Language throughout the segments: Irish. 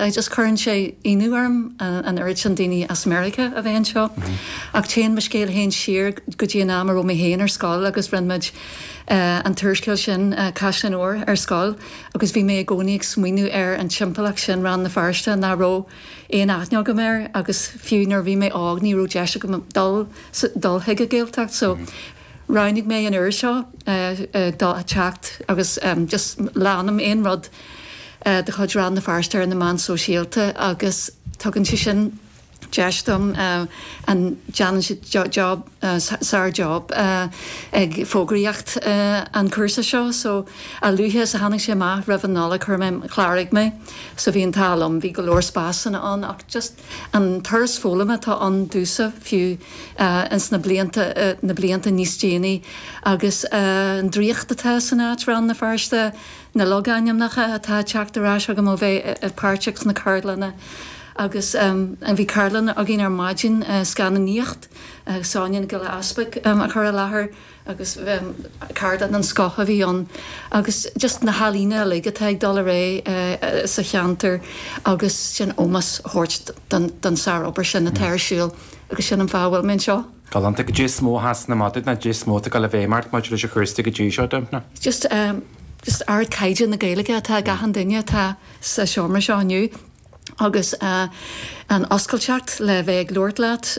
I just Cuireann sé ionadh orm an oiread sin daoine as Meiriceá a bheith anseo. Ach téann mo scéal féin siar go dtí an am a raibh mé féin ar scoil agus rinne muid an t-úrscéal sin Caisleáin Óir ar scoil agus bhí mé i gcónaí ag smaoineamh ar an timpeallacht sin Rann na Feirste nach raibh aon aithne agam air agus fiú nuair a bhí mé óg ní raibh deis agam dul chuig an Ghaeltacht so Roghnaigh mé an uair seo teacht agus just leanaim aon rud de chuid Rann na Feirste ar na meáin sóisialta agus tugann sé sin deis dom an, déanann siad job, sár job ag fógraíocht an cúrsa seo so a luaithe is a tháinig sé amach roimh an Nollaig chuir mé, chláraigh mé so bhí an t-ádh liom, bhí go leor spásanna ann ach just. An turas foghlama atá ann domhsa, fiú ins na blianta níos déanaí, agus an draíocht atá san áit, Rann na Feirste, na logainmneacha atá ag teacht ar ais agam ó bheith páirteach sna ceardlanna. Agus bhí ceardlann againn ar maidin, scannánaíocht, Sonia Nic Giolla Easbuig a chuir i láthair. agus ceardlann den scoth a bhí ann agus just na healaíona uilig atá ag dul ar aghaidh sa cheantar agus sin ómós a thabhairt don sárobair sin atá ar siúl agus sin an fáth a bhfuil mé anseo. Galánta. Goidé is mó a sheasann amach duit nó goidé is mó atá ag gabháil i bhfeidhm ort maidir leis an chúrsa go dtí seo, Dympna. Just ardchaighdeán na Gaeilge atá ag achan duine atá sa seomra seo inniu. agus an oscailteacht le bheith ag labhairt leat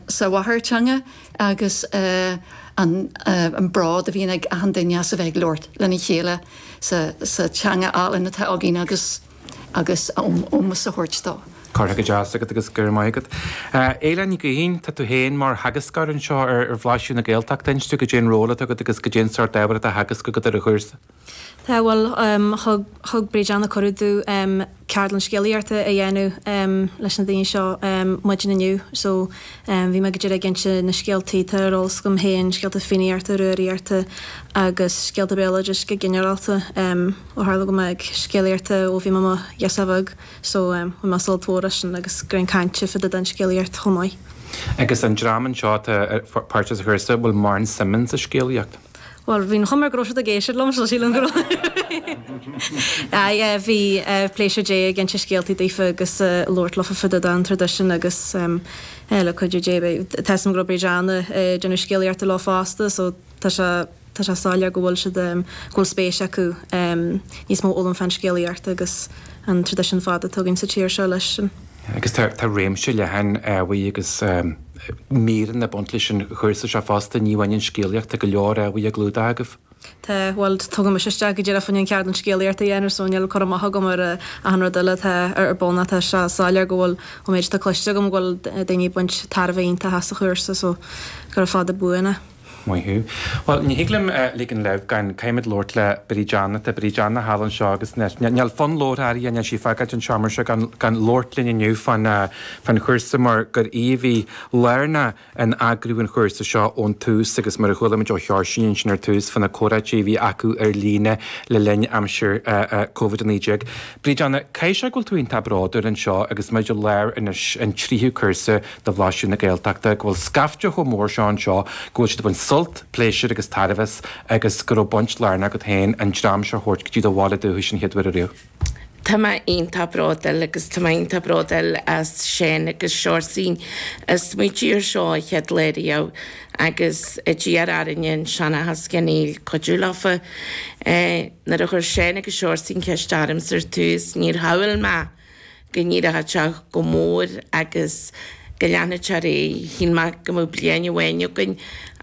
sa mháthairtheanga agus an bród a bhíonn ag achan duine as a bheith ag labhairt lena chéile sa teanga álainn atá againn agus agus ómós a thabhairt dó. Curtha go deas agat agus go raibh maith agat. Éile Ní Gaoithín, tá tú féin mar theagascóir anseo ar Bhlaisiú na Gaeltachta, inis domh goidé an ról atá agat agus goidé an sórt ábhar atá á theagasc agat ar an chúrsa. Tá, bhuel, thug Bríd Anna cuireadh dúinn ceardlann scéalaíochta a dhéanamh leis na daoine seo maidin inniu so bhí mé go díreach ag inse na scéaltaí atá ar eolas agam féin, scéalta Fiannaíochta, Rúraíochta agus scéalta béaloidis go ginearálta ó tharla go mbím ag scéalaíocht ó bhí mé i mo ghirseach bheag so bhain mé sult mór as sin agus greas cainte fá dtaobh den scéalaíocht chomh maith. Agus an dream anseo atá páirteach sa chúrsa, bhfuil mórán suim acu sa scéalaíocht. Bhuel, bhí an chuma air go raibh siad ag éisteacht liom, so sílim go raibh. Aye, eh, bhí, eh, pléisiúr a bheith ag inse scéaltaí daofa agus, eh, labhairt leofa fá dtaobh den traidisiún agus, em, eh, le cuidiú Dé bhí, tá 'fhios a'm go raibh Bríd Anna, eh, ag déanamh scéalaíochta leo fosta so tá sé, tá sé soiléir go bhfuil siad, em, go bhfuil spéis acu, em, níos mó a fhoghlaim fán scéalaíocht agus an traidisiún fada atá againn sa tír seo leis sin. Agus tá réimse leathan ábhair agus míreanna ag baint leis an chúrsa seo fosta, ní amháin an scéalaíocht, tá go leor ábhair á gclúdach agaibh. Tá, bhuel, tugadh mise isteach go díreach an ceardlann scéalaíochta a dhéanamh so níl cur amach agam ar achan rud eile atá ar bun ach tá sé soiléir go bhfuil, ón méid atá cloiste agam, go bhfuil daoine ag baint tairbhe iontach as an chúrsa so gura fada buan é. Maith thú. Bhuel, ní thig liom ligean leibh gan caithfimid labhairt le Bríd Anna, tá Bríd Anna thall anseo agus níl fonn labhartha uirthi níl sí ag fágáilt an tseomra seo gan labhairt linn inniu faoin faoin chúrsa mar gur í a bhí lárnach in eagrú an chúrsa seo ón tús agus mar a chualaimid ó Sheoirsín ansin ar tús faoi na comhráití a bhí acu ar líne le linn aimsir Covid 19. Bríd Anna, caithfidh sé go bhfuil tú iontach bródúil anseo agus muid i lár anois an tríú cúrsa de Bhlaiseadh na Gaeltachta, go bhfuil scaifte chomh mór seo anseo go bhfuil siad ag baint sult, pléisir agus tairbhe as agus go raibh baint lárnach agat féin an dream seo a thabhairt go dtí do bhaile dúchais an chéad uair ariamh. Tá mé iontach bródúil agus tá mé iontach bródúil as Seán agus Seoirsín a smaoitigh ar seo an chéad lá riamh agus a d'iarr orainne an seanachas geonaíl cuidiú leofa. Nuair a chuir Seán agus Seoirsín ceist ormsa ar tús níor shamhail mé, go n-éireodh sé chomh mór agus go leanfadh sé ar aghaidh. Shíl mé go mbeadh bliain amháin againn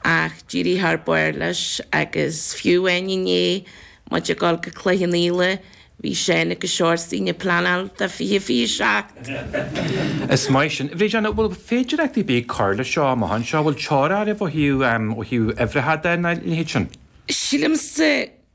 ach d'éirigh thar barr leis agus fiú amháin inné, muid ag dul go Cloich Cheann Fhaola, bhí Seán agus Seoirsín ag pleanáil do 2027! Is maith sin. Bríd Anna, an bhfuil féidireacht ar bith ag cur le seo amach anseo? An bhfuil teora oraibh ó thaobh uimhreacha de, nó a leithéid sin? Sílimse